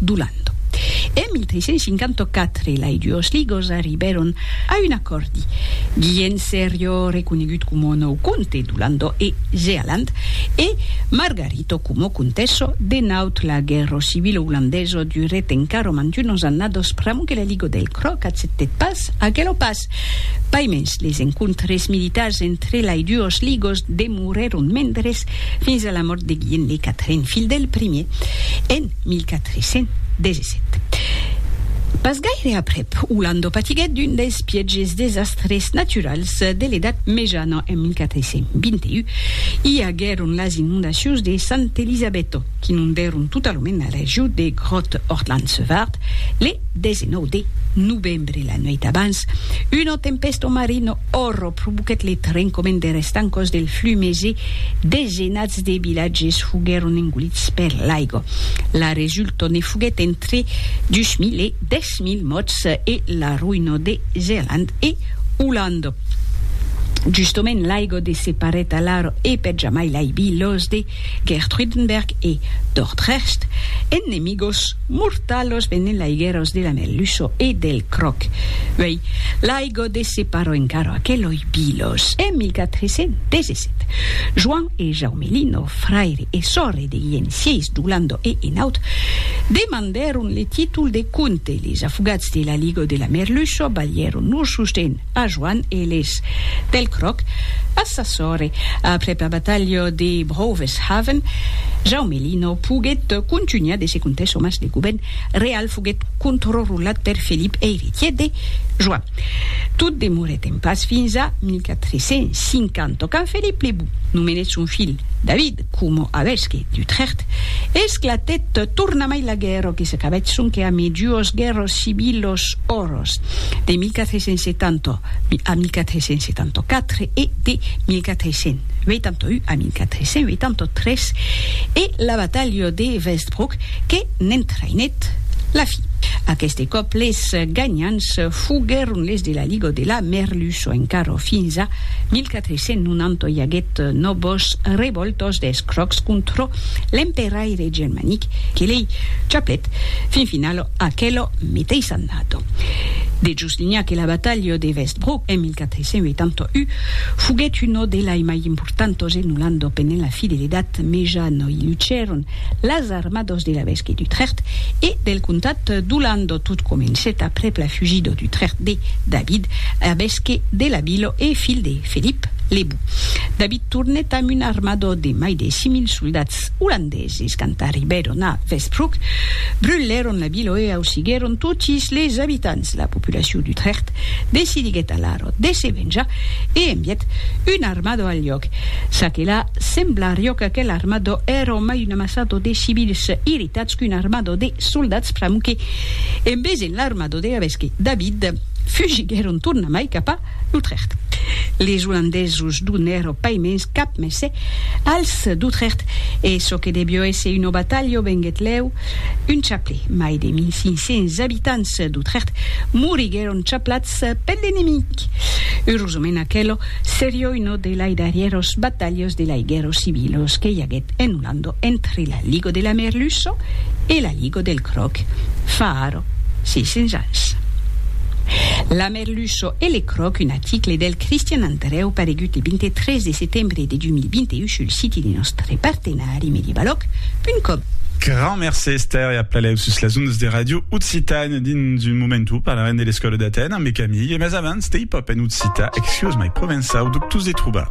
D'Oland. En 1354 lai duos ligos arribèron a un acòrdi. Guillem serió reconegut coma nòu comte d'Olando e Zealand e Margarito coma comtessa de Naut. La guèrra civila olandesa durèt encara mantunos annados pr'amor que la liga del Cròc accèptèt pas aquela pas. Quimet. Paimens, les encontres militars entre lai duos ligos demorèron mendres fins a la mòrt de Guilhèm de Catrin, filh del primier, en 1417. Pas gaire aprèp, Olando patiguèt d'un dels pièges desastres naturals de l'Edat Mejana en 1421. I aguèron las inondacions de Sant'Elisabetto, qu'inondèron totalament la region de Groth-Ortland-Sevart le 19 de novembre. Sempre la nuèit abans, una tempèsta o marin òrro provoquèt le trencament der estancòs del Flumes e desenats de vilatges foguèron engolits per l'aigo. La resulta ne foguèt entre 2.000 e 10.000 mòrts e la roïna de Zealand e Olanda. Justament l'aigo de se parèt alara e per jamai l'aibi los de Gertruydenberg e Dordrecht, ennemigos mortalos venent laigueros de la Melluço e del Croc. Uei, l'aigo de separò encara aqueloi bilos en 1417. Joan e Jaume Lino, fraire e sòrre de Guilhem sièis d'Olanda e Enaut, demandèron le títol de comte. Les afogats de l'aligo de la Merluço balhèron lor sosten. a Joan Eles. Pel cròc, a sa sòrre, aprèp la batalha de Broveshaven, Jaume Lino poguèt contunhar de se contar çò mas de govèrn real foguèt controrulat per Felip eiretièr de Joan. Tot demorèt en pas fins a 1450 quand Felip le Bon nomenèt son filh David, coma avesqui d'Utrecht, esclatèt tornamai la guèrra que s'acabèt sonque a mi duos guèrras civilos oros de 1470 a 1474 e de 1481 a 1483 e la batalha de Westbrook que n'entraïnèt la fin. Aqueste còp les ganhants foguèron les de la Liga de la Merluçon encara fins a 1485. Se non anto i aguèt nobos revòltos des crocs contrò l'emperaire germanic que lei chaplèt fin finalo aquelo meteis annato. De Juslinha que la batalha de Westbrook en 1481 foguèt uno delai mai importantos en Olanda penent la fidelitat, meja noi lucèron las. armados de la Vesque d'Utrecht e del comtat d'Olando. Tot comencèt aprèp la fugida d'Utrecht de David, arvesque de la vila e filh de Felip le Bou. David tornèt amb un armada de mai de 6.000 soldats olandeses. Quand arribèron a Westbroek, brulèron la vila e ausiguèron totis les abitants. La populacion d'Utrecht decidiguèt alara de se venjar e envièt una armada al lloc. Ça que la, semblariá qu'aquela armada èra mai una Sato de civils irritats qu'un armado de soldats pramuque en vesen l'armado de Gavesque David, fugiguèron tornamai cap a L'Utrecht. Les Olandesos donèro pas mens cap messe als d'Utrecht e çò que debió èsser una batalha venguèt lèu un chaplè. Mai de 1500 abitants d'Utrecht moriguèron chaplats per l'enemic. Eurosament aquelo serió una de lai darrièros batalhas de lai guèrra civilos que i aguèt. en un ando entre la ligo de la Merluço e la ligo del Croc, fa ara 600 ans. La Merluço e le Croc, un aticle del Cristian Andrèu paregut le 23 de setembre de 2021 sul siti de nòstre partenari medievaloc.com. Grand mercé Esther e a Plaléu sus las ondas de Radio Occitània. Dins un momentu parlarem de l'escòla d'Atèn ambe Camille, mas abans, Stay Pop en occitan, Excuse my provençau, dubtós de trobar.